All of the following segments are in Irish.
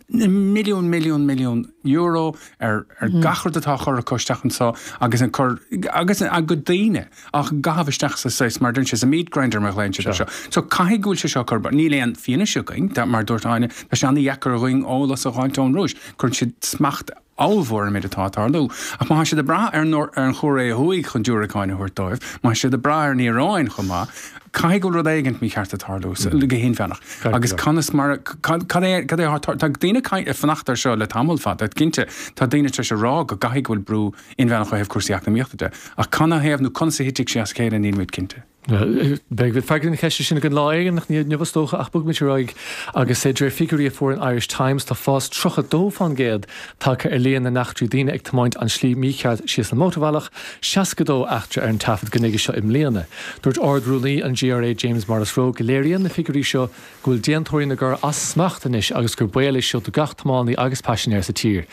milliún, milliún, milliún euro ar gach rud atá á chur acu isteach anso agus a cur, agus a gcuid daoine á gcaitheamh isteach sa, saghas, mar a deireann sé, sa meat grinder mar a ghlaonn siad anseo. So caithfidh go bhfuil sé seo ag cur. Níl aon fianaise againn, mar a dúirt Áine, tá sé an-dheacair dhúinn eolas a fháilt ón Rúis. Cuireann siad smacht ollmhór ar an méid atá ag tarlú. Ach má tá siad ag brath ar an Chóiré Thuaidh chun diúracáin a thabhairt dóibh, má tá siad ag brath ar an Iaráin chomh maith, caithfidh go bhfuil rud éigint mícheart ag tarlú, go hinmheánach. Agus conas mar a, cad é, cad é atá, tá daoine ag fanacht air seo le tamall fada, cinnte, tá daoine tar éis a rá go gcaithfidh go bhfuil brú inmheánach ó thaobh cúrsaí eacnamaíochta de, ach canathaobh nó conas a thitfidh sé as a chéile, nílimid cinnte. Beidh freagra ar na ceisteanna sin againn lá éigin ach ní inniu is dócha, ach bogfaimid ar aghaidh agus de réir figiúirí a fuair an Irish Times tá fás 32% tagtha ar líon na n-eachtraí daoine ag tiomáint an tslí mícheart síos an mhótarbhealach, 62 eachtra ar an taifead go nuige seo i mbliana. Dúirt Ard-Rúnaí an GRA James Morrisroe go léiríonn na figiúirí seo go bhfuil déantóirí na gcor as smacht anois agus gur baol é seo do gach tiománaí agus paisinéir sa tír.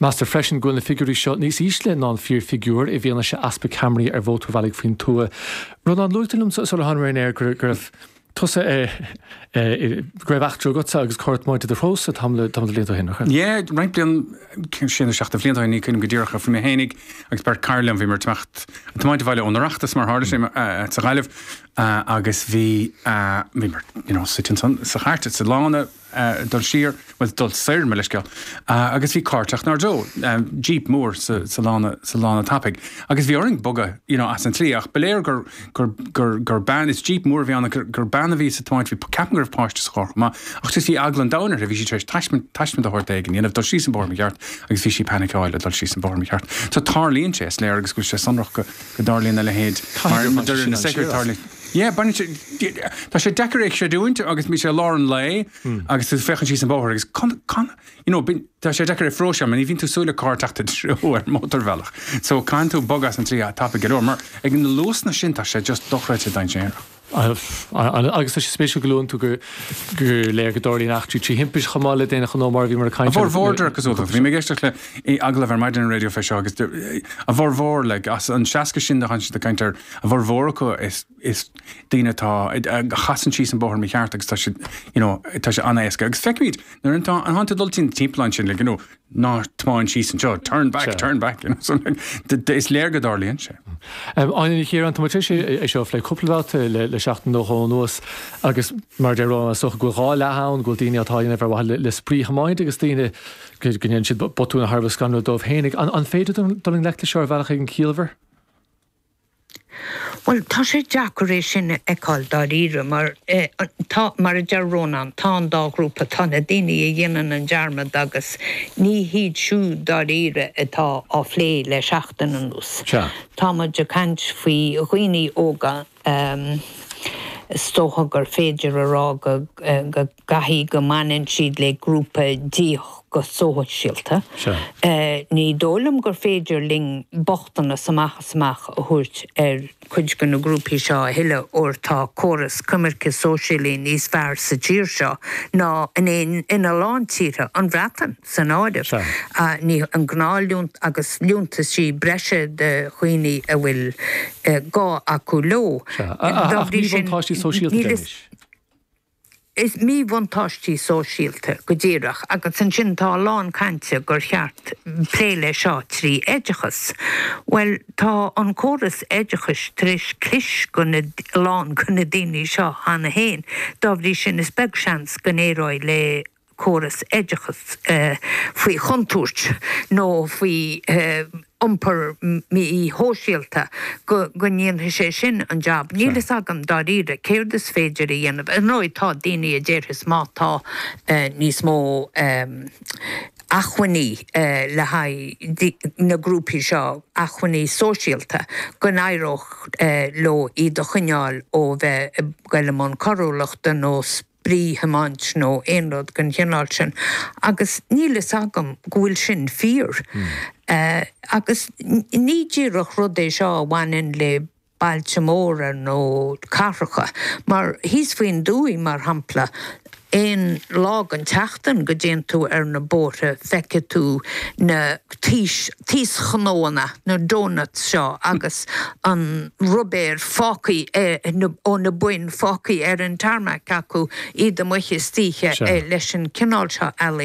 Meastar freisin go bhfuil na figiúirí seo níos ísle ná an fíorfhigiúr i bhfianaise easpa ceamaraí ar mhótarbhealaigh faoin tuath. Rónán, luaitear liom sular thánamar ar an aer go raibh tusa i, go raibh eachtra agatsa agus carr ag tiomáint i do threo-sa tamall de bhlianta ó shin, nach raibh? Yea, roinnt blian, sé nó seacht de bhlianta ó shin, ní cuimhnim go díreach, ach bhí mé fhéinig agus beirt cara liom, bhíomar ag teacht, ag tiomáint abhaile ón Oireachtas mar tharla sé, sa Ghaillimh, Ah, agus bhí, ah, bhíomar, you know, suite ansan, sa chairt, sa lána, ah, dul siar, bhuel, dul soir, mo leithscéal, ah, agus bhí carr ag teacht 'nár dtreo, ah, jeep mór sa, sa lána, sa lána tapaidh, agus bhí orainn bogadh, you know, as an tslí, ach ba léir gur, gur, gur, gur bean, is jeep mór a bhí ann, gur, gur bean a bhí á tiomáint, bhí, ceapaim go raibh páiste sa charr chomh maith, ach just bhí eagla an domhain uirthi, bhí sí tar éis taisme, taisme de shórt éigin a dhéanamh, dul síos an bóthar mícheart, agus bhí sí ag panicáil ag dul síos an bóthar mícheart. So, tarlaíonn sé, is léir, agus go bhfuil sé sonrach go, go dtarlaíonn a leithéid. Caithfidh gur bhain sé sin siar asat. Yeah, baineann sé, tá sé deacair é a chreidiúint agus bhí sé i lár an lae agus tú ag féachaint síos an bóthar agus you know bíonn, tá sé deacair é a phróiseáil mar ní bhíonn tú ag súil le carr ag teacht i do threo ar mótarbhealach so caitheann tú bogadh as an tslí tapaidh go leor mar ag na luasanna sin tá sé just dochreidte dainséarach. Agus tá sé spéisiúil go luann tú gur léir go dtarlaíonn eachtraí trí thimpist chomh maith le d'aon ghnó, mar a bhíomar ag caint air. A bhformhór, is cosúil. Bhí mé ag éisteacht le agallamh ar maidin ar an raidió fé seo agus a bhformhór, like, as an 60 sin a thánn siad ag caint air, a bhformhór acu is daoine atá, a chasann síos an bóthar mícheart agus tá sé, you know, tá sé an-éasca. Agus feicimid nuair atá, a thánn tú ag dul timpeall ansin, like, you know, ná tiomáin síos anseo, turn back, turn back, you know, is léir go dtarlaíonn sé. Áine Ní Chiaráin, Tá muid tar éis é seo a phlé cúpla babhta le seachtain nó dhó anuas agus mar a deir Rónán, is dócha go bhfuil dhá leath ann, go bhfuil daoine atá á dhéanamh ar mhaithe le spraoithiomáint agus daoine go ndéanann siad botúin thar a bheith scanrúil dóibh féin. An féidir dul i ngleic leis seo ar bhealach éigin ciallmhar? Bhuel, tá sé deacair é sin a fheiceáil dáiríre mar tá, mar a deir Rónán, tá an dá ghrúpa, tá na daoine a dhéanann an dearmad agus ní hiad siúd dáiríre atá á phlé le seachtain anuas. Tá muid ag caint faoi dhaoine óga, is dócha gur féidir a rá go. gcaithfidh go mbaineann siad le grúpa díothach go sóisialta. Ní dóigh liom gur féidir linn bochtanas amach is amach a thabhairt ar chuid de na grúpaí seo a thuilleadh óir tá córas coimirce sóisialaí níos fearr sa tír seo ná ina lán tíortha, an Bhreatain san áireamh. An gnáthliúntas agus liúntaisí breise do dhaoine a bhfuil gá acu leo. Ach míbhuntáistí sóisialta de anois? Is míbhuntáistí sóisialta go díreach, agus ansin tá a lán cainte gur cheart plé le seo trí oideachas. Bhuel, tá an córas oideachais tar éis cliseadh ar a lán de na daoine seo cheana féin, dá bhrí sin is beag seans go n-éireoidh le. córas oideachais faoi chontúirt nó faoi iompar mí-shóisialta, go ndéanfaidh sé sin an jab. Níl fhios agam, dáiríre, céard is féidir a dhéanamh. Ar ndóigh, tá daoine a déarfas má tá níos mó acmhainní le haghaidh na grúpaí seo, acmhainní sóisialta, go n-éireodh leo iad a choinneáil ó bheith ag goil i mbun coiriúlachta nó spraoithiomáint nó aon rud den chineál sin agus níl fhios agam go bhfuil sin fíor. Agus ní díreach rud é seo a bhaineann le bailte móra nó cathracha, mar thíos faoin dtuaith mar shampla, aon lá den tseachtain go dtéann tú ar na bóithre feicfidh tú na taos, taoschnónna, na donuts seo agus an rubar fágtha ó na boinn fágtha ar an tarmac acu, iad amuigh istoíche leis an gcineál seo ealaíon.